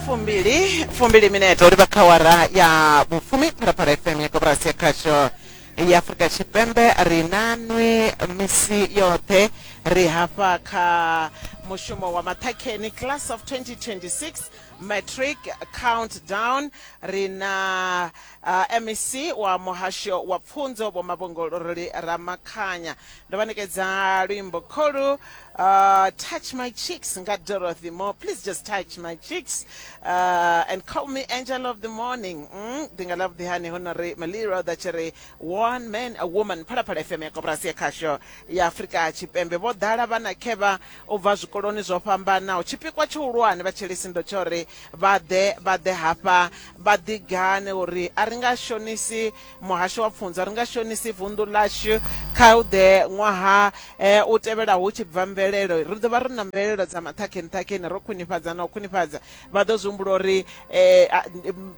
fumbili fumbili minete uri vha kha wara ya vhufumi phalaphala fm ya koporasi ya khasho ya afurika tshipembe ri na nwi misi yoṱhe ri hafha kha mushumo wa maṱhakheni class of 2026 matric countdown ri na uh, mec wa muhasho wa pfunzo vho mavhongoloroli ramakhanya ndo vha ṋekedza luimbo kholu uh, touch my cheeks nga dorothy more please just touch my cheeks uh, and call me angel of the morning mm, ndi nga love the honey ho no ri maliro da tshi ri one man a woman phalaphala fm ya koporasi ya khasho ya afurika tshipembe vho ḓala vhana khevha u bva zwikoloni zwo fhambanaho tshipikwa tshihulwane vha tshelisi ndo tsho ri vha ḓe vha ḓe hafha vha ḓigane uri a ri nga shonisi muhasho wa pfunzo ri nga shonisi vunḓu ḽashu kha u ḓe ṅwaha eh, u tevhela hu tshi bva mvelelo ri ḓo vha ri na mvelelo dza maṱhakheni ṱhakheni ro khwinifhadza na u khwinifhadza vha ḓo zwi humbula uri eh,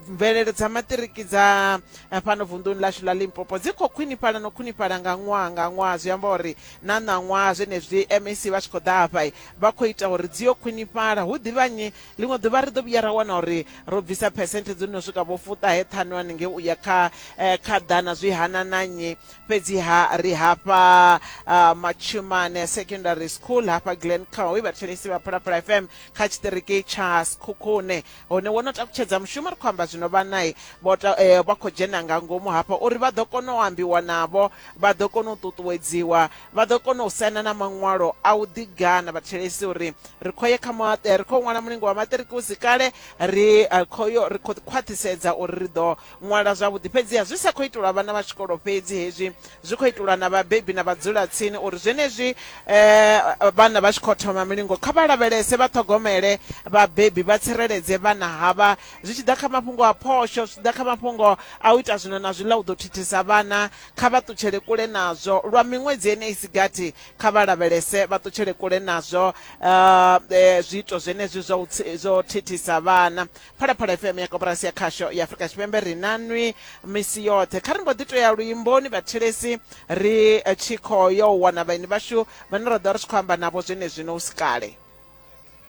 mvelelo dza maṱiriki dza eh, fhano vunḓuni lashu ḽa limpopo dzi khou khwinifhala no khwinifhala nga ṅwaha nga ṅwaha zwi amba uri na ṋaṅwaha zwenezwi mac vha tshi khou ḓa hafha vha khou ita uri dzi yo khwinifhala hu ḓivhanyi Ḽiṅwe ḓuvha ri ḓo vhuya ra wana uri ro bvisa phesenthe dzo no swika vho fuṱahe ṱhanu haningei u ya kha eh, kha ḓana zwi hana na nnyi fhedziha ri hafha ah, matshumane secondary school hafha glen cow vha thetshelesi vha phalaphala fm kha tshiṱiriki tsha sikhukhune hone wo no takutshedza mushumo ri khou amba zwino vhanai vho ta- eh, vha khou dzhena nga ngomu hafha uri vha ḓo kona u ambiwa navho vha ḓo kona u ṱuṱuwedziwa vha ḓo kona u saina na maṅwalo a u ḓigana vhathetshelesi uri ri khou ye kha maṱe ri khou ṅwala mulingo wa maṱiriki u si kale ri khou yo ri khou khwaṱhisedza uri ri ḓo ṅwala zwavhuḓi fhedziha zwi sa khou itelwa vhana vha tshikolo fhedzi hezwi zwi khou itelwa na vhabebi na vhadzulatsini uri zwenezwi um vhana vha tshi khou thoma milingo kha vha lavhelese vha ṱhogomele vhabebi vha tsireledze vhana havha zwi tshi ḓa kha mafhungo a phosho zwi tshi ḓa kha mafhungo a u ita zwino na zwiḽa u ḓo thithisa vhana kha vha ṱutshele kule nazwo lwa miṅwedzi ene isi gathi kha vha lavhelese vha ṱutshele kule nazwo uh, eh, zwiito zwenezwi zwo thithisa vhana phalaphala fm ya koporasi ya khasho ya afurika tshipembe ri na nwi misi yoṱhe kha ri mbo ḓi to ya luimboni vhathelesi ri eh, tshi khou yo wana vhaini vhashu vhane ra ḓo ri tshi khou amba navho zwenezwino u si kale